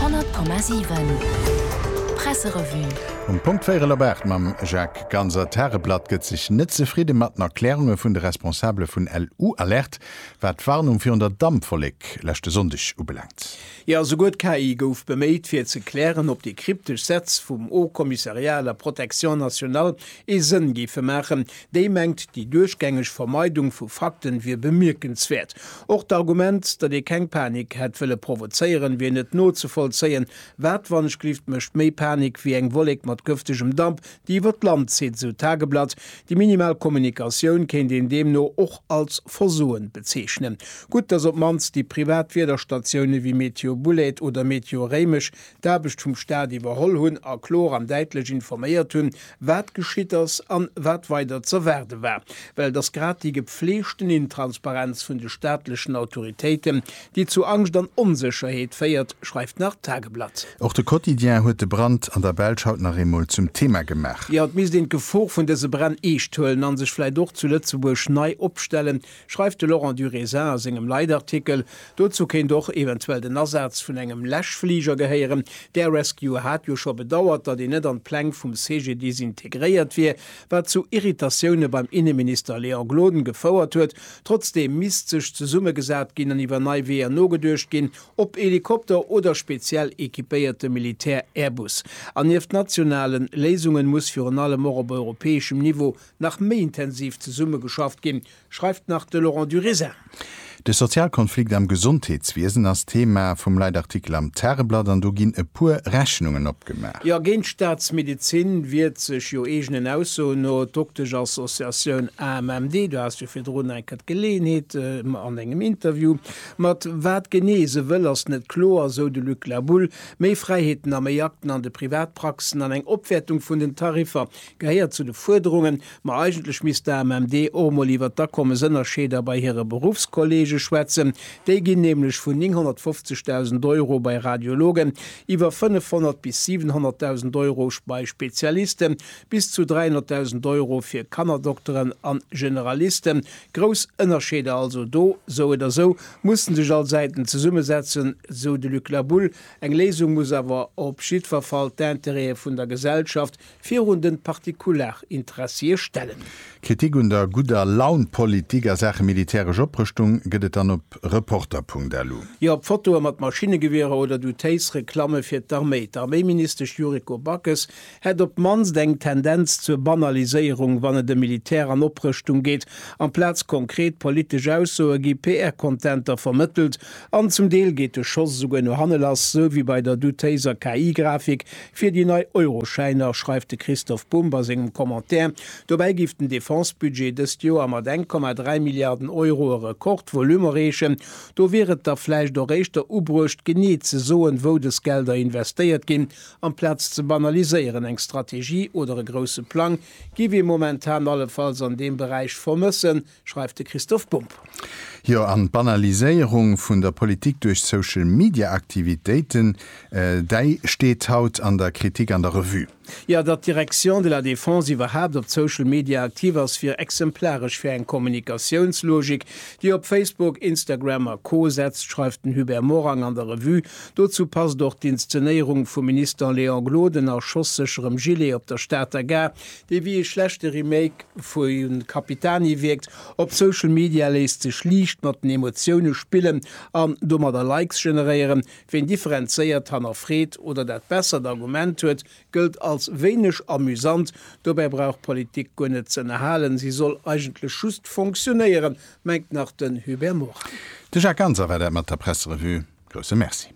100,7 Presserevue. Um Punkt véierel op aacht mam Jacques Ganser. D'Tageblatt gëtt sech net zefridde mat den Erklärunge vun de Responsabele vun LU Alert, wat d'Warnung virun der Dampwollek leschte Sonndeg ubelaangt. Jo, esouguer d'KI gouf beméit, fir ze klären, ob déi kryptesch Sätz vum Haut Commissariat à la Protection nationale ee Sënn géife maachen. Déi mengt, déi duerchgängeg Vermeidung vu Fakten wier bemierkenswäert. Och d'Argument, datt ee keng Panik hätt wëlle provozéieren, wier net nozevollzéien. Waatwanneschglift mécht méi Panik wéi eng Wollek mat gëftegem Damp, déi iwwer d'Land zitt, esou d'Tageblatt. Déi minimal Kommunikatioun kéint een deemno och als Versoen bezeechnen. Gutt, datt op d'mannst déi privat Wiederstatioune wéi Meteo Bouled oder Meteo Réimech d'Aarbecht vum Staat iwwerholl hunn a klor an däitlech informéiert hunn, wat geschitt ass an wat weider z'erwaarde war. Well et ass grad déi gepfleegten Intransparenz vun de staatlechen Autoritéiten, déi zu Angscht an Onsécherheet féiert, schreift nach d'Tageblatt. Och de Quotidien huet de Brand an der Belsch haut nach eemol zum Thema gemaach. Jo, et misst een d'Gefor vun dëse Bränn eescht huelen a sech vläicht och zu Lëtzebuerg nei opstellen, schreift de Laurent du Raisin a sengem Leitartikel. Dozou kéint och eventuell den Asaz vun engem Läschfliger gehéieren. D'Air Rescue hat jo scho bedauert, datt en net an d'Pläng vum CGDIS integréiert wier, wat zu Irritatioune beim Inneminister Léon Gloden gefouert huet. Trotzdeem misst sech zesummegesat ginn an iwwer nei Weeër nogeduecht ginn, ob Helikopter oder speziell equipéierte Militär-Airbus. An nieft nationale Léisunge muss virun allem och op europäeschem Niveau nach méi intensiv zesummegeschafft ginn, schreift nach de Laurent Durisin. De Sozialkonflikt am Gesondheetswiesen ass Thema vum Leitartikel am Tageblatt an do ginn e puer Rechnungen opgemaach. Jo, géint d'Staatsmedezin wiert sech jo eegenen Aussoen no d'Dokteschassoziatioun AMMD. Du has jo virdrun enker d'Geleeënheet an engem Interview. Mat wat genee se wëll ass net kloer, sou de Luc Laboule. Méi Fräiheeten a méi Akten an de Privatpraxen an eng Opwäertung vun den Tariffer. Gehéiert zu de Fuerderungen, ma eigentlech misst d'AMMD och emol iwwert d'Akommesënnerscheeder bei hire Beruffskolleege schwätzen. Déi ginn nämlech vun 950.000 Euro bei Radiologen, iwwer 500 bis 700.000 Euro bei Spezialisten, bis zu 300.000 Euro fir Kannerdokteren an Generalisten. Grouss Ënnerscheeder also do. Sou oder sou musse sech all Säiten zesummesetzen, sou de Luc Labulle. Eng Léisung muss awer op jiddwer Fall d'Intérêtë vun der Gesellschaft, virun den Partikularinteressië stellen. Kritik un der gudder Laun Politik a Saache militäresch Oprëschtung gëtt et dann op Reporter.lu. Jo op Fotoe mat Maschinegewierer oder du téiss Reklamme fir d'Arméi. D'Arméiministesch Yuriko Backes hätt op d'mannst eng Tendenz zur Banaliséierung wann et ëm Militär an Oprëschtung geet. Amplaz konkret politesch Aussoe gi PR-Contenter vermëttelt an zum Deel geet de Schoss esouguer no hanne lass, sou wéi bei der du téisser KI-Grafik Fir déi nei Euroschäiner, schreift de Christoph Bumb a sengem Commentaire. Dobäi géif den Defense-Budget dëst Joer mat 1,3 Milliarden Euro e Rekordvolume erreechen. Do wier et da vläicht och éischter ubruecht, genee ze soen, wou dës Gelder investéiert ginn, amplaz ze banaliséieren. Eng Strategie oder e grousse Plang géif ee momentan allefalls an deem Beräich vermëssen. schreift de Christoph Bumb. Jo, an d'Banaliséierung vun der Politik duerch Social-Media-Aktivitéiten, däi steet haut an der Kritik an der Revue. Jo, datt d'Direction de la Défense iwwerhaapt op Social Media aktiv ass, wier exemplaresch fir eng Kommunikatiounslogik, déi op Facebook, Instagram a Co setzt, schreift den Hubert Morang an der Revue. Dozou passt och d'Inszenéierung vum Minister Léon Gloden a schosssécherem Gilet op der Stater Gare, Dee wéi ee schlechte Remake vu Capitani wierkt. Op Social Media léisst sech liicht mat den Emotioune spillen an domadder Likes generéieren. Ween differenzéiert hannerfreet oder dat bessert Argument huet, gëllt als wéineg amüsant. Dobäi brauch d'Politik guer net ze ënnerhalen, si soll eigentlech just fonctionéieren, mengt nach den Hubert Morin. De Jacques Ganser war dat mat der Presserevue. Grousse Merci.